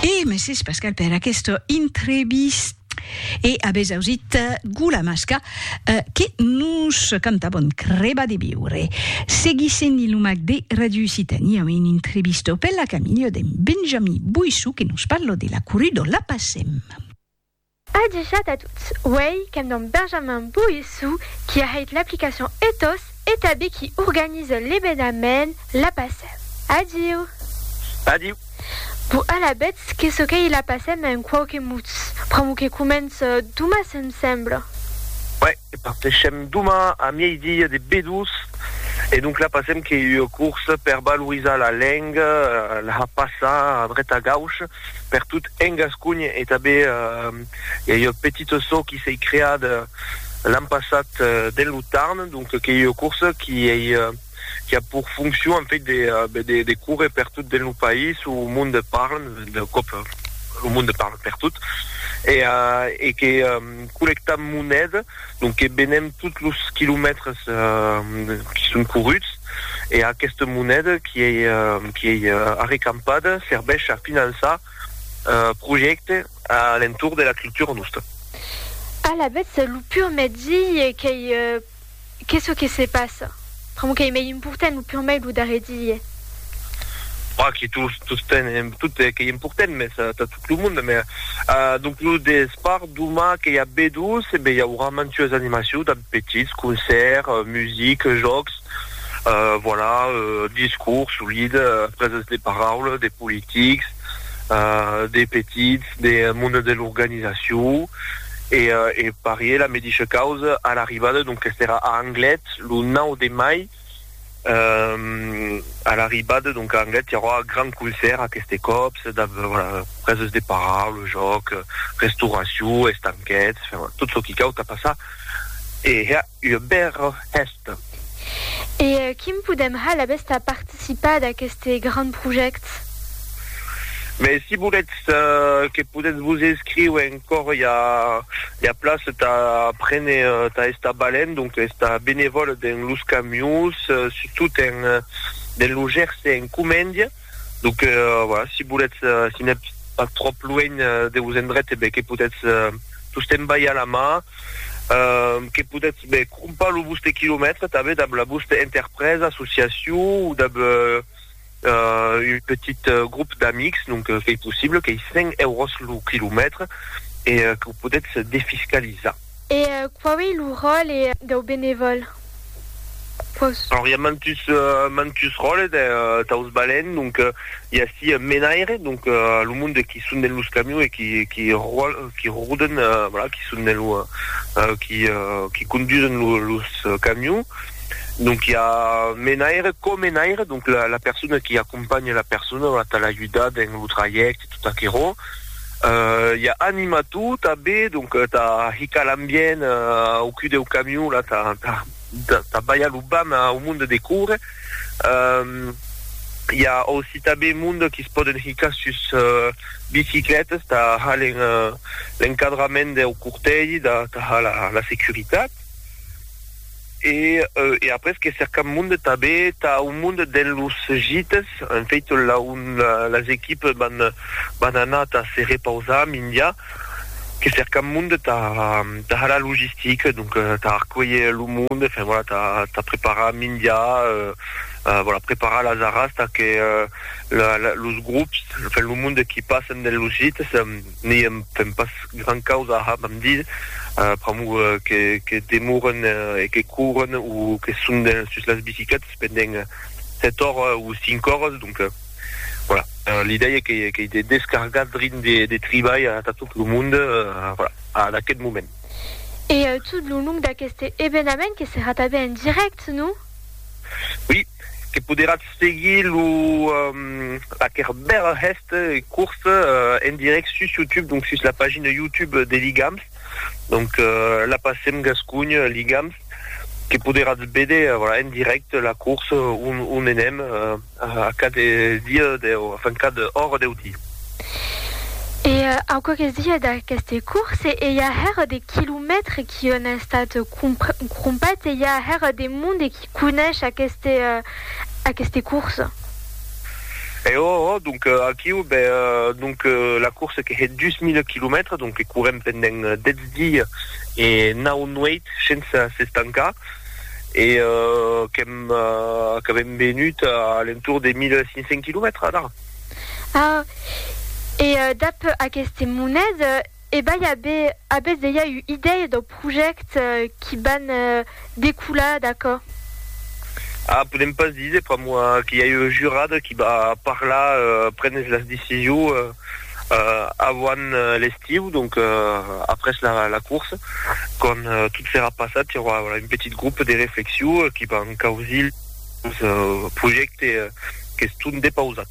E Mrs. Pascal per aquesta entrevista. E avètz ausit Gula Masca eh, que nos canta Bon Creba de Viure. Seguissent in lo mac de Radio Occitània amb un entrevistau per la Camilha de Benjamí Boissou que nos parla de la Coruda La Passem. Adishat a tots, uèi qu'èm damb Benjamin Boissou qui a hèit l'aplicacion Ethos e tabé qui organise l'ebenament La Passem. Adiu! Adiu! Bon alabetz que çò qu'ei La Passem en quauque mots, pr'amor que comence doma se'm sembla. Uèi, parteishem doma a mièidi de B2 e donc La Passem qu'ei ua corsa per valorizar la lenga, la har passar a dreta a gauche, per tot en Gasconha e tanben i a ua petit assò qui s'ei creat l'an passat dens lo Tarn, donc qu'ei ua corsa qui ei qui a pur foncion en fait de de córrer per tot dens lo país, o monde parle d'un còp lo monde parle per tot e e que collectam moneda. Donc que venem tots los quilomètres qui son corruts e aquesta moneda qui ei arrecampada serveish a finançar projèctes a l'entorn de la cultura nosta. Alavetz lo pur mètzi qu'ei que çò que se passa. Pr'amor qu'ei mei important lo purmei lo darrer diie. Bah, que tu sosten en tot qu'ei important, mès tà tot lo monde, mès donc lo despart doma que i a B2, e ben i aurà mantues animacious damb petits, concèrt, music, jòcs, voilà, discours, solit, preses de paraula, de politics, des petits, des monde de l'organisacion e e parier la medisha causa a l'arribada, donc qu'est era a Anglet lo 9 de mai a l'arribada donc a Anglet i aurà un grand concèrt aqueste còp preses de paraula, jòc, restauracion, estanquets, tot çò qui cau tà passar e ua bèra hèsta. E quin podèm hal a bèsta participar d'aqueste grand projèct? Mès si volètz que podètz vos escriu encòr i a ua plaça tà prene tà estar balènt, donc estar benevòl dens los camions, surtout dens lo Gerse en Comèndia. Donc euh, voilà, si volètz, euh, si n'êtes pas trop loin euh, de vos endrets, eh ben, que podètz euh, tostemps balhar la mà, euh, que podètz ben, crompar lo vostre quilomètre també dab la vostra interpresa, associació o dab euh, euh, un petit euh, grup d'amics, donc euh, qu'ei possible, qu'ei 100 euros lo quilomètre e euh, que ho podètz defiscalizar. E quau ei lo ròle dau benevòl? Quaus. Alors, i a mantus, mantus ròles de, daus balèns, donc, i a ací un menaire, donc, lo monde qui son dens los camions e qui, qui ròl, qui roden, voilà, qui son dens lo, qui, qui condusen lo, los camions, donc, i a menaire, co-menaire, donc, la, la persona qui acompanha la persona, voilà, tà l'ajudar dens lo trajècte, tot aquerò. i a anima tot a be donc ta hica l'ambient au cul deu camion la ta ta baia lo bam au monde de coure i a aussi ta be monde qui se poden hica sus bicicletes ta halen l'encadrament deu cortègi da ta ha la securitat E e après que cercam monde tabé tà un monde dens los gites, en fait là on las equipes van van anar tà se repausar mindia que cercam monde tà tà har la logistique donc tà arcuelher lo monde enfin voilà tà tà preparar mindia euh voilà preparar las arras tà que la la los grops enfin lo monde qui passen dens los gites N'i èm fent pas gran causa a hab amb Dieu, pr'amor que demoren e que couren o que son sus las bicicletas pendent sèt oras o cinc oras, donc voilà, l'idèia qu'ei de descargar drin de tribalh atà tot lo monde, voilà, ad aquest moment. E tot lo long d'aqueste evenament que serà tanben en dirèct, non? Oui. que poderatz seguir lo laquèr bèl hèst curs en dirèct sus YouTube, donc sus la pagina YouTube de Ligams, donc la passem gascogn Ligams, que poderatz véder voilà en dirèct la curs on enèm a cad dia deu enfin cad ora deu dia. E aqueres dies d'aqueste curs e i a hèr de quilomètres qui an estat crompats e i a hèr de monde qui conéisher aqueste, aqueste course. E o, o, donc aquiu, be, donc la course que hè 2000 quilomètres, donc que courem pendent 10 dies e 9 nueit sense s'estancar, e qu'èm, qu'avèm venut a l'entour de 1500 quilomètres, adà. Ah, e dab aqueste monet, E bai a be, a bes deia u idèia dau project qui ban decolar d'aquò? Ah, podem pas diser pr'amor que i a eu jurada qui ba parlar, prenes las decision avant l'estiu, donc après la course, quand tot serà passat, i aurà un petit groupe de reflexion qui ban causir lo projecte qu'es tot depausat.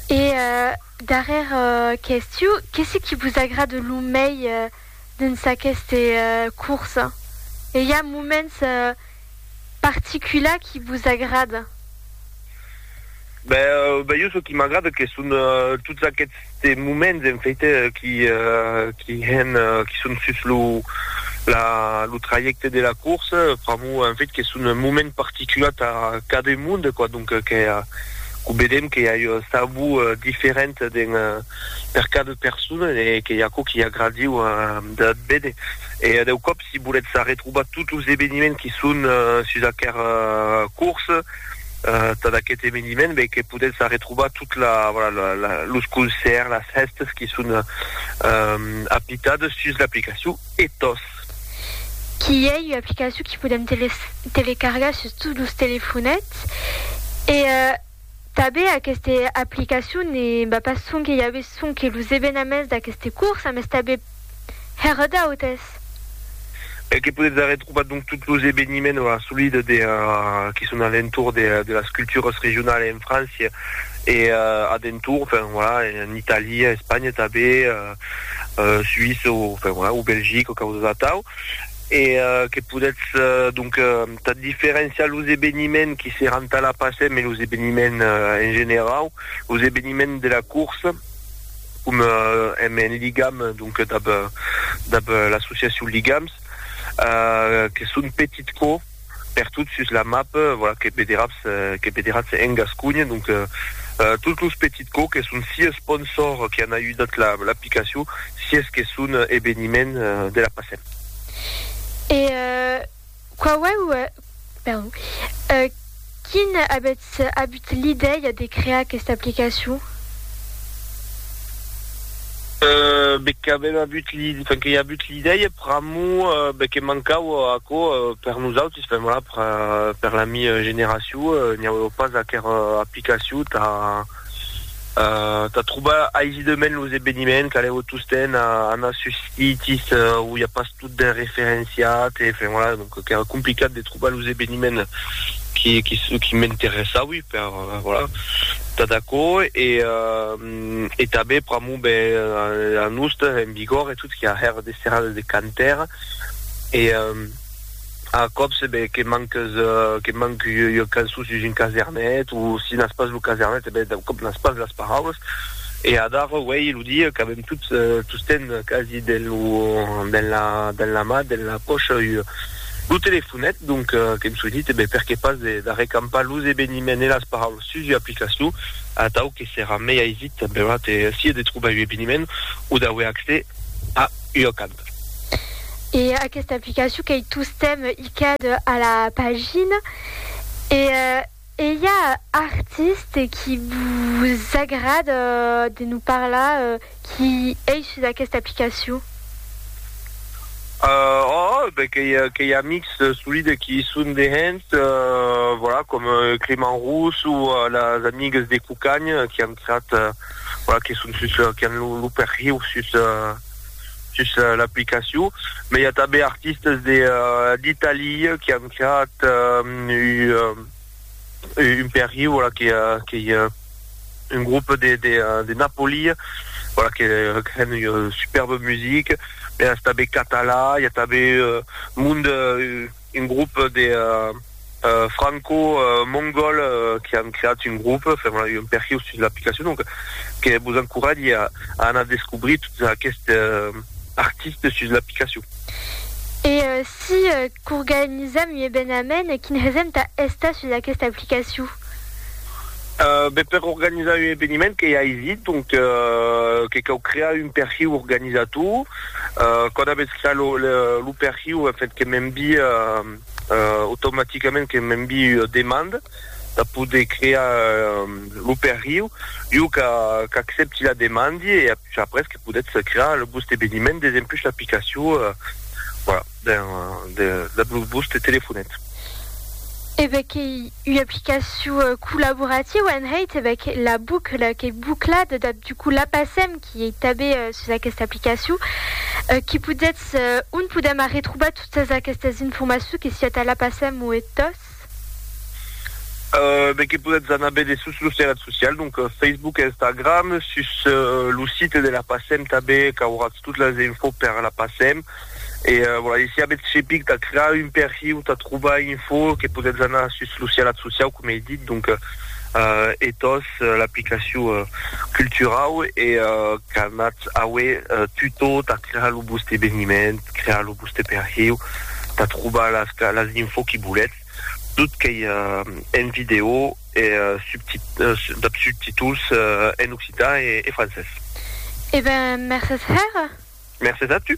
E Darrèra question, qu'es ce qui vos agrade lo mei dens aqueste corsa? E i a moments particulars qui vos agrada? Ben jo çò qui m'agrada que son tots aquests moments en fait qui qui hèn qui son sus lo la lo trajècte de la corsa pr'amor en fait que son moments particulars tà cadun monde quoi donc que Quò vedèm que i a uns tabous diferents dins per cada persona e que i a aquò qu'i agradiu d'ath véder. E deu còp si volètz arretrobar tots los eveniments qui son sus aquer cors tad aquest eveniment ben que podètz arretrobar tot la los concèrts, las hèstes qui son apitades sus l'aplicacion Ethos. qu'i ei ua aplicacion qu'i podem telecargar sus tots los telefonets e tanben aquesta aplicacion ne va pas sonque i avé sonque los evenaments d'aqueste corsa mes tanben hèr d'autes. E que podetz arretrobar donc tots los eveniments o assolida de qui son a l'entorn de de las culturas regionalas en França e a d'entorn, enfin voilà, en Italia, Espanha tanben. Suïssa o enfin voilà o Belgica o causas atau e que podètz donc tà diferenciar los eveniments qui seràn tà la Pasem e los eveniments en generau, los eveniments de la corsa com èm en ligam donc dab dab l'associacion Ligams que son petit cò. pertot sus la map, voilà, que vederatz, que vederatz en Gasconha. Donc, tots los petits cò que son si esponsors que an ajudat la, l'aplicacion, si es que son eveniment de la passem. E quauèu, perdon, Quin avètz avut l'idèia de crear aquesta aplicacion? Be qu'avèm avut l'i, enfin que i avut l'idèia pr'amor be que mancava aquò per nosautis, enfin voilà, per la mi generacion, n'i aueva pas aquera aplicacion tà, tà trobar aisidament los eveniments qu'anèu tostemp anar sus sitis où i a pas totdemp referenciat e enfin voilà donc qu'èra complicat de trobar los eveniments qui qui m'interessaui per voilà tà d'aquò e e tanben pr'amor be a nosta en Bigòrre tot qui a hèr de serrades de cantaire e A còps, ben, que manques, que manc ua cançon sus un casernet, o si n'as pas lo casernet, ben, d'un còp n'as pas las paraulas. E adara uèi lo dia qu'avèm tots, tostemp quasi dens lo, dens la, dens la mà, dens la pòcha ua, lo telefonet, donc, qu'èm soinit, e ben, per qué pas de, d'arrecampar los eveniments e las paraulas sus ua aplicacion, atau que serà mei aisit, beurat, e sia de trobar un eveniment o d'auer accès a ua cançon. Whatsapp. E aquesta aplicacion qu'ei tostemp icad a la pagina e ei a artist qui vos agrad de nos parlar qui ei sus aquesta aplicacion? Òòh, ben qu'ei amics solide qui i son de hènt, voilà, com Clément Rousse o las amigues de Cucagn qui an creat, voilà, que son sus, qui an lo perhiu sus sus l'aplicacion, mès i a tanben artistes de d'Italia qui an creat un perhi, voilà, qu'ei un groupe de de Napoli, voilà, que hèn ua superba musica, mès tanben catalan, i a tanben monde un grop de franco mongol que an creat un grop fèm la un perhiu sus l'aplicacion donc que vos encoratge a anar descobrir tot aqueste artiste sus l'aplicacion. E si qu'organisam un evenament quin hesem tà estar sus aqueste aplicaciu? Ben per organizar un eveniment qu'ei aisit, donc que cau crear un perhiu organizator, quand avètz creat lo perhiu en fait que m'envii automaticament que m'envii ua demanda de poder crear lo perhiu, jo qu'accepti la demandi e après que podètz crear lo vòste eveniment desempús l'aplicacion, voilà. Ben, de la Bluesbus te telefonet. E ben qu'ei ua aplicacion collaborativa en hèit, e ben que la bucla qu'ei buclada, dab du coup la passem, qui ei tabé sus aquesta aplicacion, qui podetz, on podem arretrobar totas aquestas informaçons que siá tà la passem o e tòs? E ben que podetz anar bède sus los terrat socials, donc Facebook e Instagram, sus lo site de la passem tabé qu'auratz tot las infos per la passem, E voilà, e si avètz cepic tà crear un perfil o tà trobar info que podètz anar sus lo sialat sociau, coma ei dit, donc Ethos, l'aplicacion culturau e qu'anatz aué tutò tà crear lo voste eveniment, crear lo voste perfil, tà trobar las info que volètz. tot qu'ei en vidèo e dab subtituls en occitan e francés. E ben, mercés hèr! Mercés a tu!